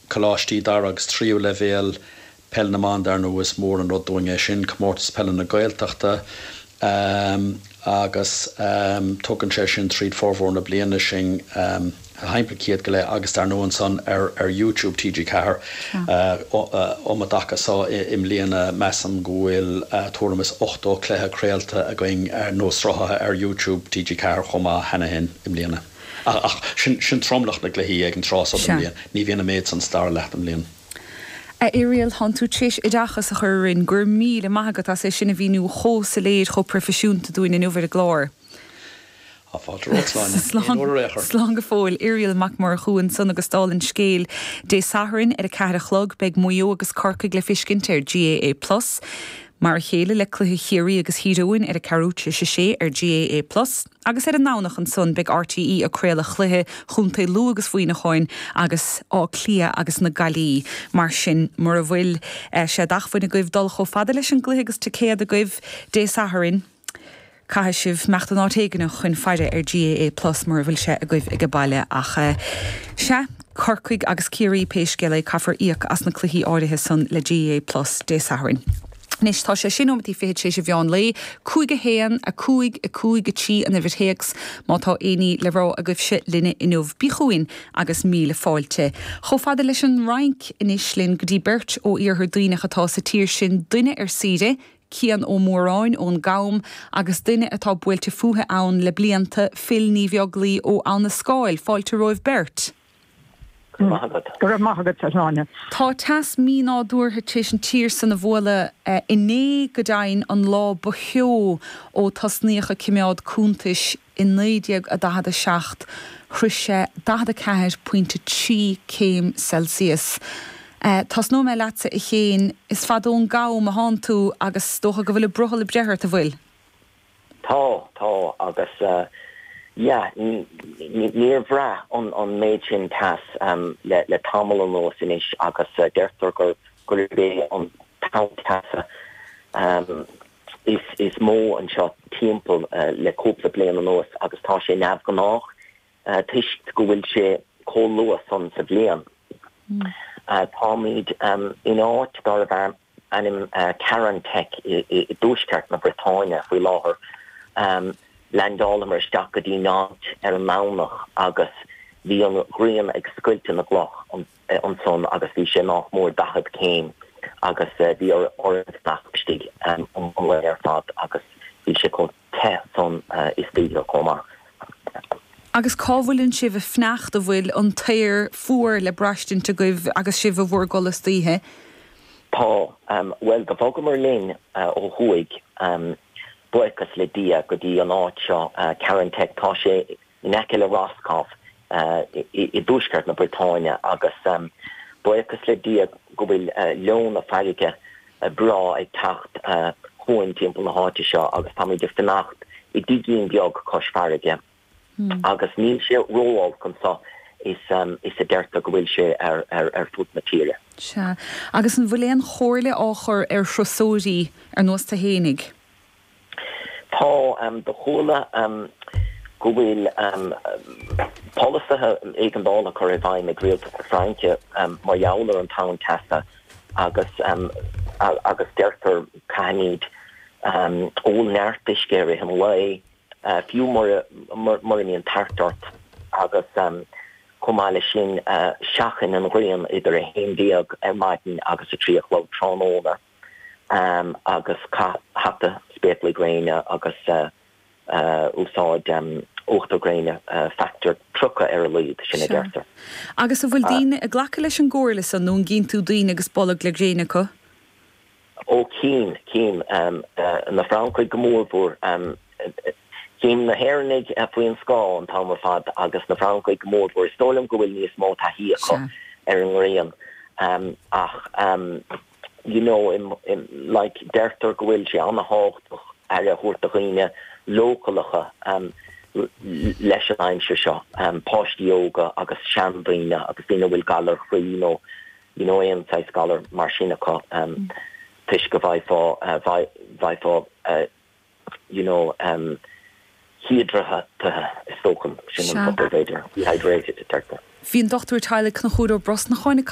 Coláistí dara agus tríú leibhéal peil na mban dar ndóigh is mór an rud dúinn é sin, Comórtas Peile na Gaeltachta agus tugann sé sin tríd formhór na bliana sinn shampla iad go léir agus dar ndóigh ansan ar YouTube TG4 um an dtaca so i mbliana measaim go bhfuil tuairim is 80 cluiche craolta againn nó sruthaithe ar YouTube TG4 chomh maith cheana fhéin i mbliana. Ach sin tromlach na gcluichí ag an tráth so den bhliain. Ní bhíonn an méid san sa tarna leath den mbliain. A Irial, thánn tú tréis oideachas a chur orainn, go raibh míle maith agat as é sin a mhíniú chomh soiléir, chomh proifisiúnta dúinn inniu ar an gclár. Tá fáilte romhat, a Shláine. Aon uair ar aon chor. Slán go fóill. Irial Mac Murchú ansan agus dála an scéil, Dé Sathairn ar a ceathair a chlog, beidh Maigh Eo agus Corcaigh le feiscint ar GAA Plus. Mar a chéile le cluiche Chiarraí agus Thír Eoghain ar a ceathrú tréis a sé ar GAA Plus. agus ar an nDomhnach ansan beidh RTÉ ag craoladh chluiche chontae Lú agus Mhuineacháin agus Áth Cliath agus na Gaillimhe. Mar sin, mura bhfuil sé d'acmhainn agaibh dul chomh fada leis an gcluiche agus ticéad agaibh Dé Sathairn, caithfidh sibh imeacht in áit éigin chun faire ar GAA Plus mura bhfuil sé agaibh ag a baile. Ach sea, Corcaigh agus Ciarraí pé scéal é, caithfear íoc as na cluichí áirithe san le GAA Plus Dé Sathairn. Anois tá sé sé neomataí fichead tar éis a mheán lae. 5 1, 5, 5, 3 an uimhir théacs má tá éinní le rá agaibhse linne inniu. Bí chugainn agus míle fáilte. Chomh fada leis an Fhrainc anois linn go dtí beirt ó Iarthar Duibhneach atá sa tír sin, duine ar saoire, Cian Ó Móráin ón gCam, agus duine atá buailte fúithi ann le blianta, Phil Ní Bheaglaoi ó Abha na Scáil. Fáilte romhaibh beirt. Go raibh maith agat. Go raibh maith agat, a Shláine. Tá teas mínádúrtha tar éis an tír san a bhualadh inné go deimhin, an lá ba theo ó tosnaíodh ag cimeád cúntais i 1947. Shroich sé 44 pointe 3 céim Celsius. Tosnóidh mé leatsa a Chéin, is fada ón gCam a thánn tú agus 's dócha go bhfuil an brothall ag breith ort, an bhfuil? Tá, tá agus yeah, níor bhraith an méid sin teas le tamall anuas anois agus deirtear gurb é an tonn teasa is mó anseo timpeall le cúpla bliain anuas agus tá sé neamhghnách toisc go bhfuil sé chomh luath san sa bhliain. Táimid in áit darbh ainm. ainm Carantec i dtuaisceart na Briotáine faoi láthair. Leaindeálamar isteach go dtí'n áit ar an nDomhnach agus bhí an ghrian ag scoilteadh na gcloch ansan agus bhí sé nách mór daichead céim agus bhí orainn fanacht istigh an lá ar fad agus bhí sé chomh te san istoíche chomh maith. Agus cá bhfuileann sibh ag fanacht, an bhfuil an t-aer fuar le braistint agaibh agus sibh i bhur gcodladh istoíche? Tá, bhuel do bhogamar linn ó thuaidh, buíochas le Dia, go dtí an áit seo, Carantec. Tá sé in aice le Roscoff i dtuaisceart na Briotáine agus buíochas le Dia go bhfuil leoithne farraige breá ag teacht chugainn timpeall na háite seo agus táimid ag fanacht i dtigín beag cois farraige agus níl sé ró-olc anseo is a deirtear go bhfuil sé ar fud na tíre. Sea, agus an bhfuil aon chomhairle á chur ar thurasóirí ar nós tú fhéinig? Tá, do chuala go bhfuil polasaithe éigeandála curtha i bhfeidhm ag rialtas na Fraince mar gheall ar an tonn teasa agus agus deirtear caithfimid ól neart uisce i rith an lae fiú mura mbíonn tart ort agus chomh maith leis sin seachain an ghrian idir 11 ar maidin agus 3 a chlog tráthnóna. agus caith hata, spéaclaí gréine agus úsáid uachtar gréine factor 30 ar a laghad, sin a deirtear. Agus an bhfuil daoine ag glacadh leis an gcomhairle san nó an gcíonn tú daoine agus bolg le gréin acu? Ó chím, chím na Francaigh go mór mhór. Chím na hÉireannaigh faoi an scáth an t-am ar fad agus na Francaigh go mór mhór. Is dóigh liom go bhfuil níos mó taithí acu ar an ngrian ach you know, like deirtear go bhfuil sé an-tábhachtach aire a thabhairt do dhaoine leochaileacha leis an aimsir seo, páistí óga agus seandaoine agus daoine a bhfuil galair chroí nó you know aon saghas galar mar sin acu toisc go bhfaighfeá bhfaighfeá you know híodráthaithe is dócha sin an focal b'fhéidir dehydrated deirtear. Bhí an Dochtúir Teaghlaigh Conchúr Ó Brosnacháin ag caint.